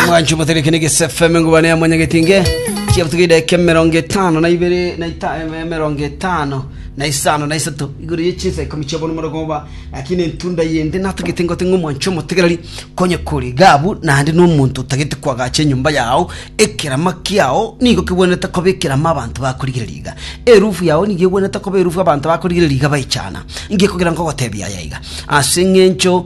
mwancho motereke ne gisefeme ngubane ya mwanya getinge chia butuga ideke mirongo itano na ibere na ita eh, mirongo itano na isano na isato igoro ye chinsa ikomi chia bono morogo oba lakini entunda yende natagete ngote ng'o mwancho motegereri konye kori gabu naende nomonto otagete kwagacha enyomba yao ekerama kiao nigo kigwenerete koba ekerama abanto bakorigereria iga erufu yao nigo egwenerete koba erufu abanto bakorigereria iga baichana ngekogera nkogotebia yaiga ase eng'encho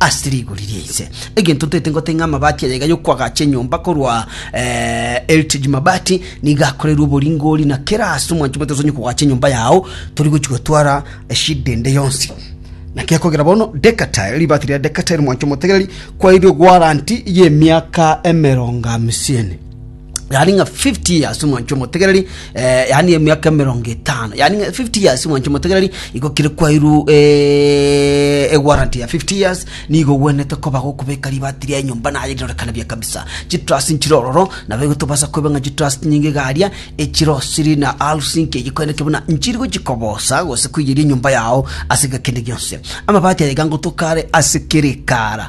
ase rigori ria ise. Egento ntoete ngote ng'a amabati aya iga y'okwagacha enyomba korwa eh, Heritage Mabati nigo akorerwe oboringori na kera ase omwancho moto osonye kogacha enyomba yao tori gochi gotwara eshida ende yonsi naki akogera bono Decatile ribati ria Decatile mwancho motegereri kwaeire warranty y'emiaka emerongo amisini yaani ng'a 50 years omwancho omotegereri eh, yaani emiaka emerongo etano yaani ng'a 50 years omwancho omotegereri igo kire kwairu eh, ewarranty ya 50 years nigo ogwenerete koba gokobeka ribati ria enyomba naye rirorekane buya kabisa chitrust nchire ororo nabo igo tobasa koiba ng'a chitrust nyinga iga aria echirosiri na housing kege koeneke buna nchiri gochikobosa gose koiyeria enyomba yao ase ng'a kende gionsi amabati aye iga ngotoka are ase kere ekara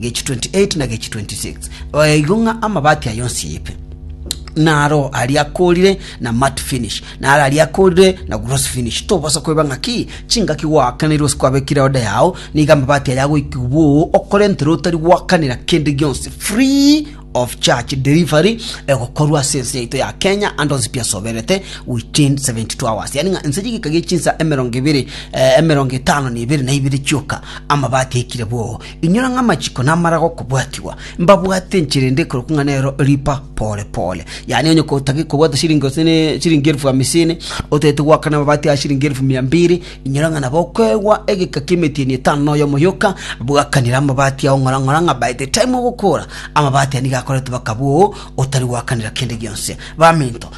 Gechi 28 na gechi 26 Oya igo ng'a amabati aye onsi ayipe. Naro aria akorire na mat finish, naro aria akorire na gross finish. Tobosa koiba ng'aki chingaki gwaakanire gose kwabekire order yao, nigo amabati aye agoikigwa bwoo okorentera otari gwakanera kende gionsi free of charge. Delivery egokorwa ase ense yaito ya Kenya ande onsi pi asoberete within 72 hours. Yaani ng'a ense chigika gie chinsa emerongo ibere eh, emerongo etano na ibere na ibere chioka amabati aikire bwoo. Inyora ng'a amachiko namara gokobwatigwa, mbabwate enchera ende ekorokwa ng'a nero ripa pore pore. Yaani onye kotagete kobwata chiringi gose ne chiringi elfu hamisini, otagete goakana amabati aya chiringi elfu mia mbiri, inyora ng'a nabo okoegwa egeka ki'emetieni etano na oyomo yoka, bwakanera amabati ao ng'ora ng'ora ng'a by the time ogokora, amabati aya nigo akoretwe bakaba oo otari goakanera kende gionsi. Baminto.